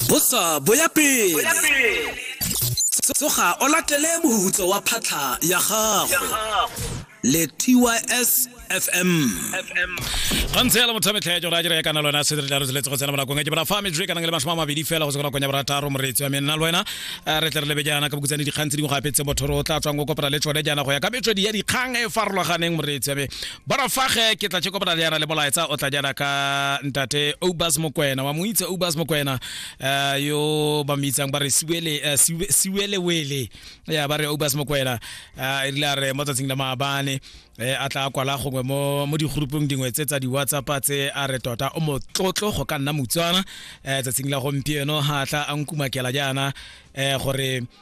bosa bo ya pele tsoga o latele mohutso wa phatlha ya gago le tys fm gantse ya le motho metlha ya jora jere ya kana lona se re jalo seletse go tsena bonakong ke bra fa me jwe kana le mashoma mabedi fela go tsena konya bra taro moretsi wa menna le wena eh, re tle re lebe jana ka bukutsane dikgang tse dingwe gape tse motho ro tla tswang go kopela le tsone jana go ya ka metswedi ya dikgang e farologaneng moretsi wa me borafage ke tla tšeko botadiana le bolaetsa o tla jana ka ntate obas mokwena wa mo itse obas mokwena uh, yo ba mo itsang ba re siwele uh, eh, siwelewele ya ba re obas mokwena uh, e rile a re mo tsatsing la maabane eh, a tla kwala gongwe mo, mo digurupong dingwe tse tsa di-whatsapp tse a re tota o motlotlo go ka nna motswana eh, tsatsing la gompieno ga tla a nkumakela jaana eh, gore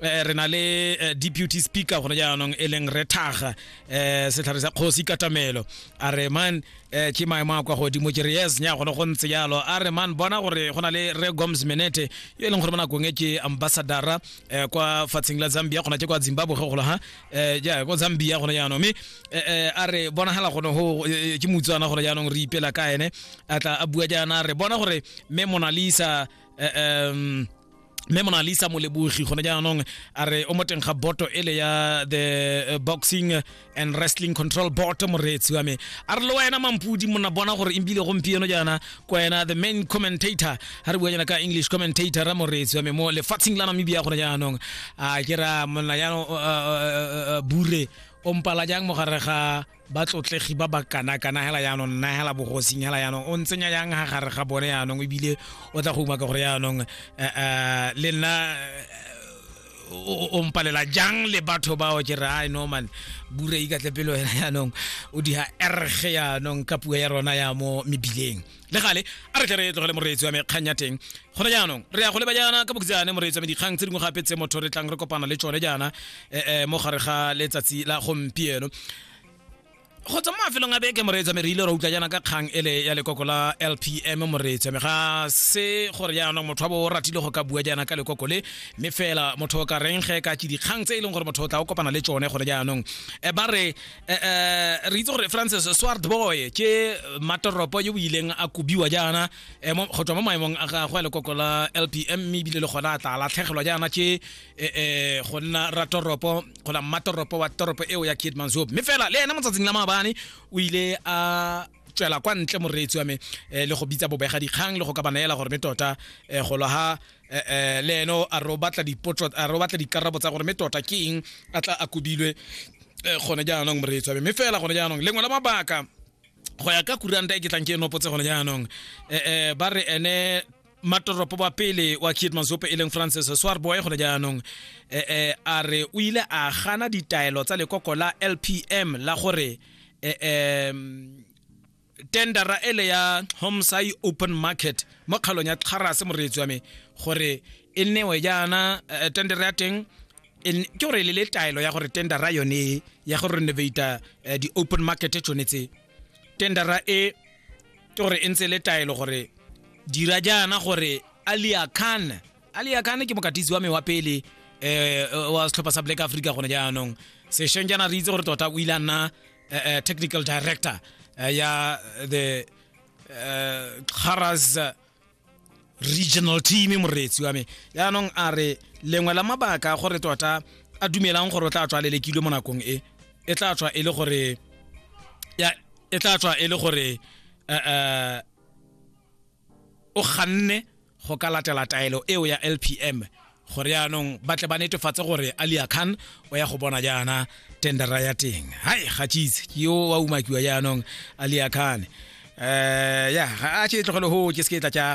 eh, re na le eh, deputy speaker gone jaanong e leng re thaga eh, setlhare sa kgosi katamelo a re man eh, ke maemo a kwa godimo ke re yes nya gone go ntse jalo a re man bona gore go na le re goms menete yo e leng gore mo nakong e ke ambassadora eh, kwa fatsheng la zambia gona ke kwa zimbabwe ge golo ha eh, ja kwa zambia gone jaanong mme eh, eh, a re bonagala gone go eh, ke motswana gone jaanong re ipela ka ene a tla a bua jaana a re bona gore mme monalisa eh, em, mme monalisa molebogi gone jaanong a re o mo teng ga boto ele ya the eh, boxing and wrestling control board moreetsi wa me a re le wena mampudi mona bona gore ebile gompieno jaana ko wena the main commentator ga re bua jaana ka english commentator ra moreetsi wa me mo lefatsheng la namibia gone jaanong a ke ra monna jaanong eh, eh, eh, eh, bure o mpala jang mo gare ga batlotlegi ba ba kanakana hela yaanong nna hela bogosing hela yaanong o ntsenya yang ha gare ga bone yaanong ebile o tla go umaka gore yaanong eh, eh, le nna eh, o mpalela jang le batho bao ke re ai norman bure ikatle pelo wena yaanong o diha erge yaanong ka puo ya rona ya mo mebileng le gale a re tle re tlogele moreetsi wa me kgang ya teng gone jaanong re ya go leba jaana ka bokhutshane moreetsi wa me dikgang tse dingwe gape tse motho re tlang re kopana le tsone jaana um mo gare ga letsatsi la gompieno go tswa mo mafelong a beke moreetsi wa me re ile ra utlwa jaana ka kgang ele ya lekoko la lpm moreetsi wa me ga se gore jaanong motho wa bo o ratile go ka bua jaana ka lekoko le mme fela motho o ka reng ge ka tse dikgang tse e leng gore motho o tla o kopana le tsone gone jaanong Eh, ba re Eh, eh, re itse gore francis swart boy ke matoropo yo o ileng a kobiwa jaana eh, mo- go tswa mo maemong a gagwe a lekoko la lpm mme ebile le gona a tla latlhegelwa jaana ke eh, eh, go nna ratoropo gona mmatoropo wa toropo eo ya kidmanshop mme fela le ena motsatsing la maabane o ile a tswela kwa ntle moreetsi wa me eh, le go bitsa bobega dikgang le go ka ba neela gore me tota eh, go lwa ha eh, eh, le eno a re o batla dipotso a re o batla dikarabo tsa gore me tota ke eng a tla a kobilwe eh, gone jaanong moreetsi wa me mme fela gone jaanong lengwe la mabaka go ya ka kuranta e ke tlang ke e nopotse gone jaanong eh, eh, ba re ene matoropo wa pele wa kid mazope e leng francis swarboy gone jaanong eh, eh, a re o ile a gana ditaelo tsa lekoko la lpm la gore eh, eh, tendera ele ya homsai open market mo kgalong ya tlharase moreetsi wa me gore e newe jaana eh, tendera ya teng e n- ke gore e le le taelo ya gore tendera yone ya go renovata eh, di-open market tsone tse tendera e ke gore e ntse le taelo gore dira jaana gore alia khan alia khan ke mokatisi wa me wa pele eh, eh wa setlhopha sa black africa gone jaanong sešweng jaana re itse gore tota o ile a nna eh, eh, technical director eh, ya the eh, Kharas regional team moreetsi wa me yaanong a re lengwe la mabaka a gore tota a dumelang gore o tla tswa lelekilwe mo nakong e e tla tswa e le gore ya e tla tswa e le gore eh, eh, o ganne go ka latela taelo eo ya lpm gore yaanong ba tle ba netefatse gore alia khan o ya go bona jaana tendera ya teng hai ga cheese ke yo wa umakiwa jaanong alia khan eh ya a tše tlogele ho ke se ke tla tša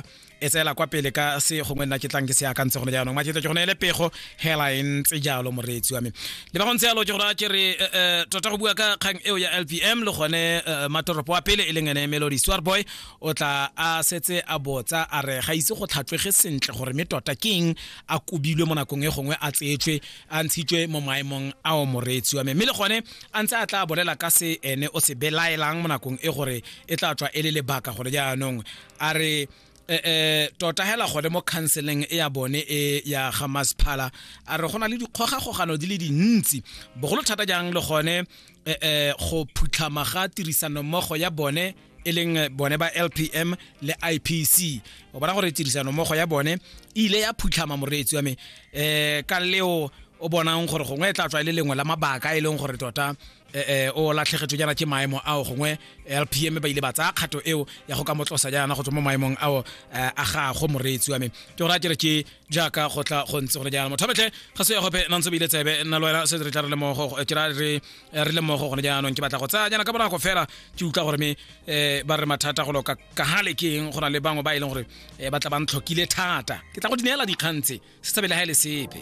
etseela kwa pele ka se gongwe nna ke tlang ke se akantse gone jaanong maketlo ke gone ele pego hela e ntse jalo moreetsi wa me le ba go ntse yalo ke gore a ke re eh, eh, tota go bua ka kgang eo ya lpm le gone eh, matoropo wa pele e leng ene melody swarboy o tla a setse a botsa a re ga ise go tlhatlwege sentle gore me tota keng a kobilwe mo nakong e gongwe a tseetswe a ntshitswe mo maemong a o moreetsi wa me mme le gone a ntse a tla bolela ka se ene o se belaelang mo nakong e gore e tla tswa e le lebaka gore jaanong a re eh, eh, tota hela gone mo counseling e ya bone e ya ga masphala a re go na le dikgogakgogano di le dintsi bogolo thata jang le gone eh, eh, go phutlhama ga tirisanommogo ya bone e leng eh, bone ba lpm le ipc o bona gore tirisano mmogo ya bone e ile ya phutlhama moreetsi wa me um ka leo o bonang gore gongwe e tla tswa e le lengwe la mabaka e leng gore tota eh, eh, o latlhegetswe jaana ke maemo ao gongwe lpm ba ile ba tsaya kgato eo ya go ka motlosa jaana go tswa mo maemong ao eh, a gago moreetsi wa me ke gore a kere ke jaaka go tla go ntse go le jaana motho betlhe ga se ya gope nantse bile tsebe nna le wena se re tla re lemogo ke ra re re lemogo gone jaanong ke batla go tsaya jaana ka bonako fela ke utlwa gore me um ba re mathata go loka ka gale ke eng go na le bangwe ba e leng gore um ba tla ba ntlhokile thata ke tla go di neela dikgang tse se tsebe le ga e le sepe